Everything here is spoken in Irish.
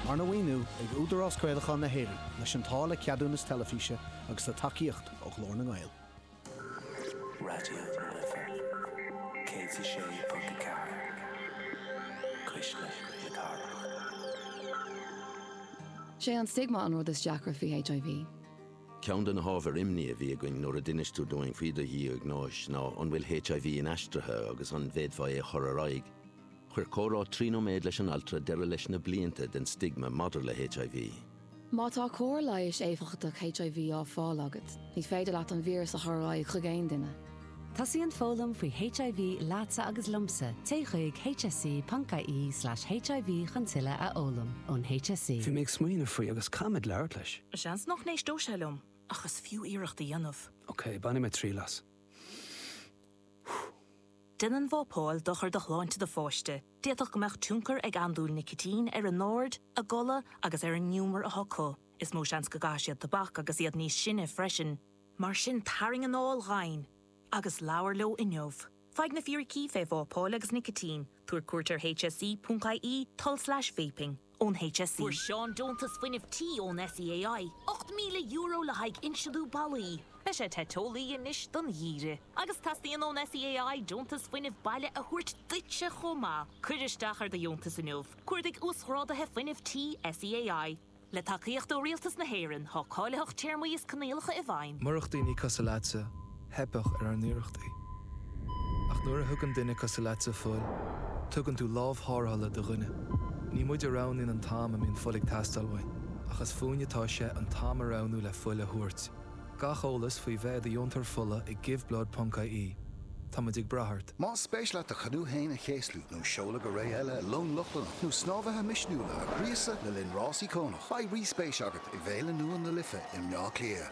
Arna mhaoiniú ag Údarás Craolacháin na hÉireann, leis an táille ceadúnais teilifíse agus le tacaíocht ó Ghlór na nGael. Raidió na Life 106.4, Cuisle na Cathrach. Sé an stigma an rud is deacra faoi HIV. Ceann de na hábhair imní a bhí againn nuair a d'inis tú dúinn faoi do dhiagnóis ná an bhfuil HIV inaistrithe agus an bhféadfá é a chur ar aghaidh. Chuir comhrá trí nóiméad leis an altra deireadh leis na blianta den stigma maidir le HIV. Má tá cóir leighis éifeachtach HIV á fáil agat, ní féidir leat an víreas a chur ar aghaidh chuig aon duine. Tosaíonn foghlaim faoi HIV leatsa agus liomsa, téigh chuig hse.ie slash HIV chun tuilleadh a fhoghlaim. Ón HSE. Bhí mé ag smaoineamh faoi agus caithfimid labhairt leis. Seans nach n-éisteodh sé liom, ach is fiú iarracht a dhéanamh. Ok, bainfidh mé triail as. Déanann vapáil dochar do shláinte do pháiste. D'fhéadfadh go mbeadh tionchar ag andúil nicitín ar a n-aird, a gcodladh agus ar an ngiúmar atá acu. Is mó seans go gcaithfidh siad tobac agus iad níos sine freisin. Mar sin tarraing anáil dhomhain agus labhair leo inniu. Faigh na fíricí fé vápáil agus nicitín, tabhair cuairt ar hse.ie, tul slash vaping. ón HSE. Fuair Seán deontas fuinnimh tí ón SEAI, €8,000 le haghaidh insliú ballaí. Beidh sé te teolaí anois don gheimhreadh agus teastaíonn ón SEAI deontas fuinnimh baile a thabhairt duitse chomh maith. Cuir isteach ar do dheontas inniu, Cuardaigh Uasghráduithe Fuinnimh Tí SEAI. Le tacaíocht ó Rialtas na hÉireann, tá cáilitheacht téarmaí is coinníollacha i bhfeidhm. Murach daoine cosúil leatsa. theipeadh ar ár n-iarrachtaí. Ach nuair a thugann duine cosúil leatsa fuil, tugann tú lámh tharrthála do dhuine. Ní muid a roghnaíonn an t-am a mbíonn fuil ag teastáil uainn, ach is fúinn atá sé an t-am a roghnú le fuil a thabhairt. Gach eolas faoi bheith i do dheontóir fola ag giveblood.ie. Tá muid ag brath ort. Más spéis leat do chanú féin a chéaslú, nó seoladh go réidh i long Lochlannach, nó snámhaithe misniúla a ghríosadh le linn rás íocónach, beidh rí-spéis agat i bhFéile nua na Life i mBleá Cliath.